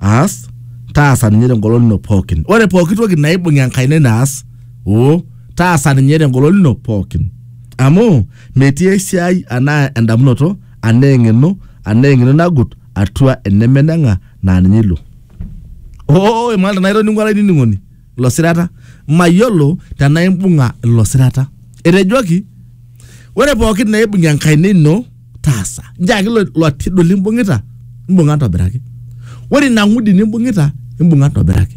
aas taasa ninye tengolon ino pookin ore pooki toki naibung enkaina ino aas oo taasa ninye tengolon ino pookin amu metii esiai anaa endamunoto anaa eng'eno anaa eng'eno nagut atua enemeneng'a naa ninye ilo oo imanita naitoning'o olainining'oni ilo sirata mayiolo tenaa imbung'a ilo sirata etejoki ore pookin naibung'i enkaina ino taasa njaaki ilo ilo tidu limbung'ita imbung'a ntobiraki ore ina ng'udi nimbung'ita imbung'a ntobiraki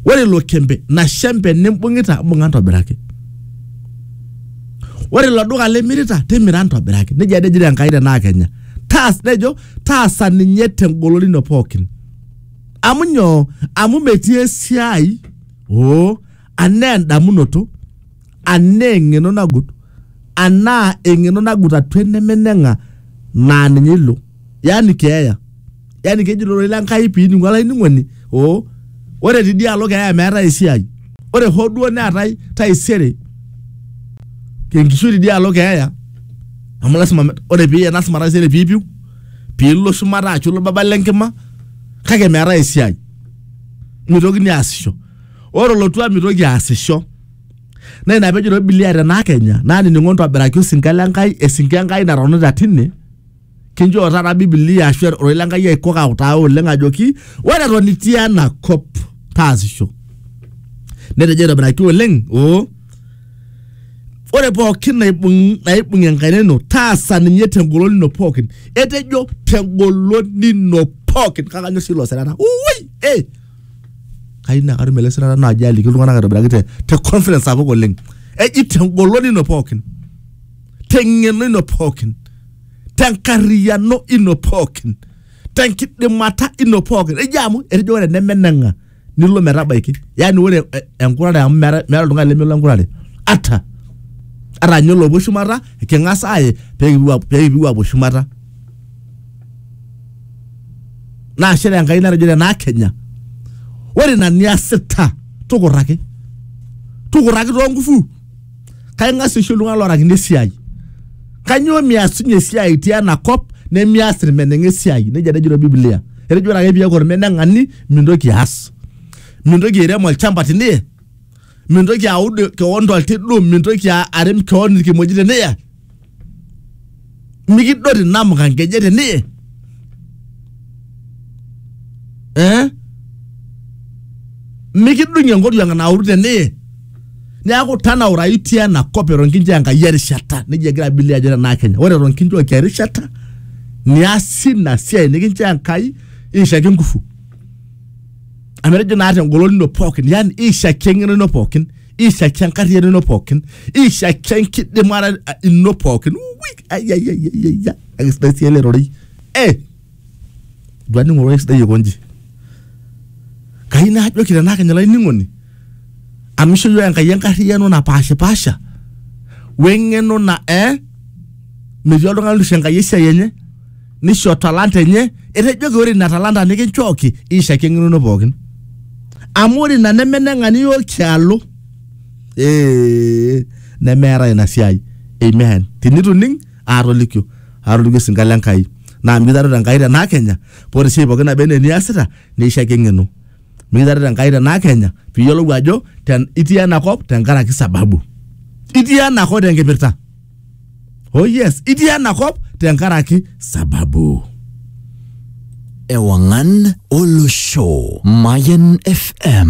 ore ilo kembe ina shembe nimbung'ita imbung'a ntobiraki ore ilo duka limirita timira ntobiraki nejia ade ejito enkai tenaa kenya taas nejo taasa ninye tengolon ino pookin amu nyoo amu metii esiai oo anaa endamunoto anaa eng'eno nagut anaa eng'eno nagut atua enemeneng'a naa ninye ilo yani keeya yani keji ilororei lenkai piningu olainining'oni oo ore tidialo keeya meetae esiai ore hoo duo neetae taisere tenkishui tidialo keeya amu lasima ore piye lasima taisere piipiu piilo shumata ashu ilo baba lenkima. kake meetae esiai mitokini aasisho ore olotua mitoki aasisho naa ina pejo ilo bilia tenaa kenya naanining'o ntobiraki osinka le Nkai esinka e Nkai natonita tine kinchoo taata bibilia ashu ororei le Nkai aikok autaa oleng ajoki ore eton itii ena kop taasisho netejo aitobiraki oleng oo ore pookin naibung naibung enkaina ino taasa ninye tengolon ino pookin etejo tengolon ino pookin kake anyor sii ilo sirata ui eh kayieu naa katum ele sirata naaji aliki iltung'anak aitobiraki te, te confidence sapuk oleng eji tengolon ino pookin teng'eno ino pookin tenkarriyiano ino pookin tenkidimata ino pookin eji amu etejo ore enemeneng'a nilo metabaiki yani ore eh, enkurare amu meeta meeta oltung'ani lemelo enkurare ata ata ninye olopuo shumata king'as aaye pee kipuo ap- pee kipuo apuo shumata naa shere enkai natejo tenaa kenya ore ina niasita tukurraki tukurraki too ngufu kaing'as isho iltung'anak loorakini esiai kanyoo miasunye esiai itii ena kop nemias irmeneng'a esiai nejia tejo ilo biblia etejo ore ake piaku ormeneng'ani mintoki aas mintoki airem olchamba teniye mintoki aud kewon toltidu mintoki a- arem kewon irkimojik teniye mikidot inamuka nkejek teniye eh? mikidung'ie nkoriong nauru teniye neaku tanaurayu itii ena kop eton kinchoo enkai erishata nejia egira bilia ajo tenaa kenya ore eton kinchooki erishata niasi ina siai nikinchoo enkai iishaki ngufu amu etejo naa tengolon ino pookin yani iishaki eng'eno ino pookin ishakia enkarriyiano ino pookin ishakia enkidimata eh, ino pookin Ui, ai, ai, ai, ai, ai, ai. Kake sidai sii ele rorei eh dua ning'oru ororei sidai aikonji kai naajoki tenaa kenya olainining'oni amu isho yiok enkai enkarriyiano napaashipaasha weng'eno na eh metii oltung'ani olusho enkai esiai enye nisho talanta enye etejoki ore ina talanta nikinchooki ishaki eng'enono pookin amu ore ina nemeneng'ani yiok tialo ee nemeeta ina siai amen tinituning aatolikio aatolikio esinka le Enkai naa mikitareto Enkai tenaa kenya paa ore esiai pookin naba enaa eniasita neishaki eng'eno mikitareto Enkai tenaa kenya piiyiolou ajo ten- itii enakop tenkaraki sababu itii enakop tenkipirta oh yes itii enakop tenkaraki sababu Ewangan Olosho. Mayan FM.